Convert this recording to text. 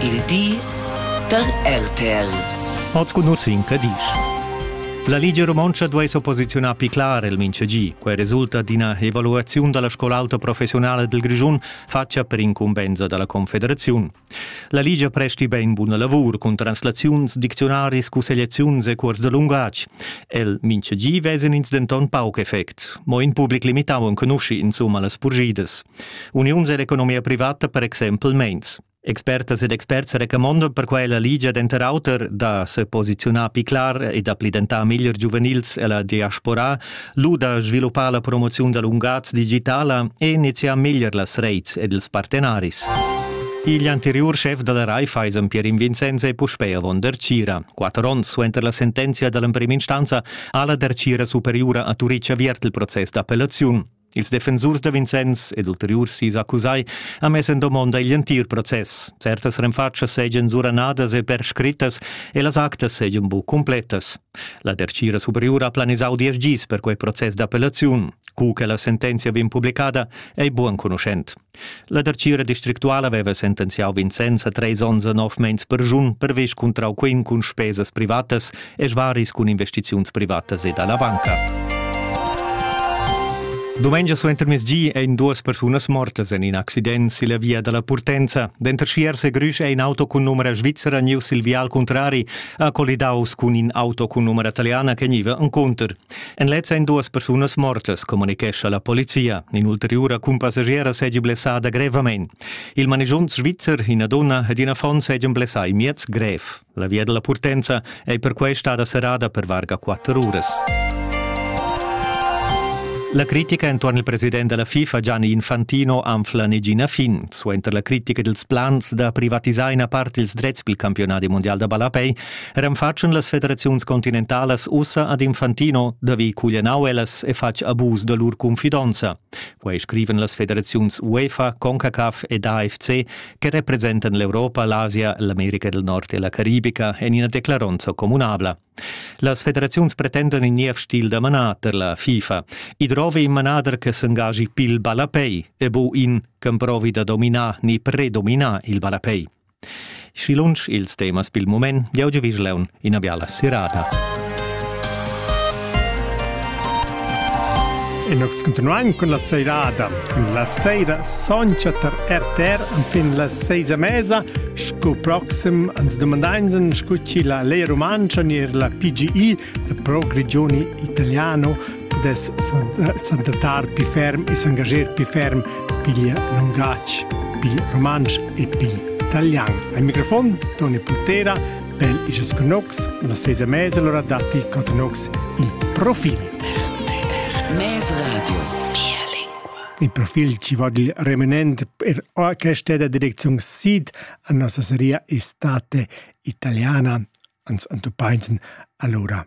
Il di da RTL. Oz cun in cadisch. La Ligia Romontscha duai s'opposiziunar pli clar el mintgegi. Quai resulta d'ina evaluaziun da la scola auta professionala dal Grischun fatga per incumbensa da la Confederaziun. La Ligia presti bain buna lavur cun translaziuns, dicziunaris, cussegliaziuns e cuors da lungatg. El mintgegi vesan ins denton pauc effect. Mo in public limitau enconusci insumma las purgidas. Uniuns ell'economia privata per exempel meins. Expertas ed experts recamondan per quella ligia denter auter da seposiziunar pli clar e da pli dentar meglier giuvenils ella diaspora, lu da sviluppar la promoziun da lungatgs digitala e iniziar meglier las reits ed ils partenaris. Igl anteriur chef dalla Raiffeisen Pierin Vincenzo è puspei avon der Cira. Quatter onns suenter la sentenzia dall'emprema instanza ha la der Cira superiura a Turitg aviert il process d'appellaziun. Ils defensurs da Vincenz ed ulteriurs sis accusai han mess en domonda igl entir process. Certas renfatschas seigien suranadas e perscrittas e las actas seigien bu cumpletas. La dertgira superiura ha planisau diesch gis per quei process d'appellaziun. Cu che la sentenzia vegn publicada ei buc enconuschent. La dartgira districtuala veva sentenziau Vincenz a treis onns e nov meins perschun pervess cuntrau quin cun spesas privatas e svaris cun investiziuns privatas e dalla banca. Domengia suentermezgi ein duas persunas mortas en in accident silla via dalla Purtenza. Denter Schiers e Grüsch è in auto cun numera svizzera niu sil vial contrari ha colidaus cun in auto cun numera italiana che niva encounter. En lez ein duas persunas mortas, communichescha la polizia. In'ulteriura cumpassigiera seigi blessada grevamein. Il manigiont svizzer, ina donna ed in affon seigien blessai miez grev. La via della purtenza ei perquei stada serrada per varga quatter uras. La critica entuorn il president della FIFA Gianni Infantino anfla negina fin. Suenter la critica dels plans da privatisar ina part ils drets pel campionat mondial da ballapei Renfatschen las federaziuns continentalas ussa ad Infantino da vi cuglianau ellas e fatg abus da lur confidonza. Quei scriven las federaziuns UEFA, CONCACAF ed AFC che representan l'Europa, l'Asia, l'America del Nord e la Caribica en ina declaronza communabla. Las federaziuns pretendan in niev stil da manader, la FIFA. I drovi in manader che s'engagi pil ballapei e bu in ch'emprovi da dominar ni predominar il ballapei. Schi lunsch ils temas pil mument, jau giuvisch leun ina biala serata. E noi continuiamo con la seirada. La seira soncha tar RTR fin la seisa mesa, sco proxim ans domandainsen scu chi la Lea Rumantscha ner la PGI, la Pro Grigioni Italiano, dess s'adattar pli ferm e s'engager pli ferm pigl lungatg, pil rumantsch e pil talian. Al microfon Toni Putera pel isas canocs, una sesa mesa allora datti cotanocs il profil. Mes radio. Mia lingua. Il profil ci vogl remanent per orchestra da direczione SID a nostra seria estate italiana ans antopainten allora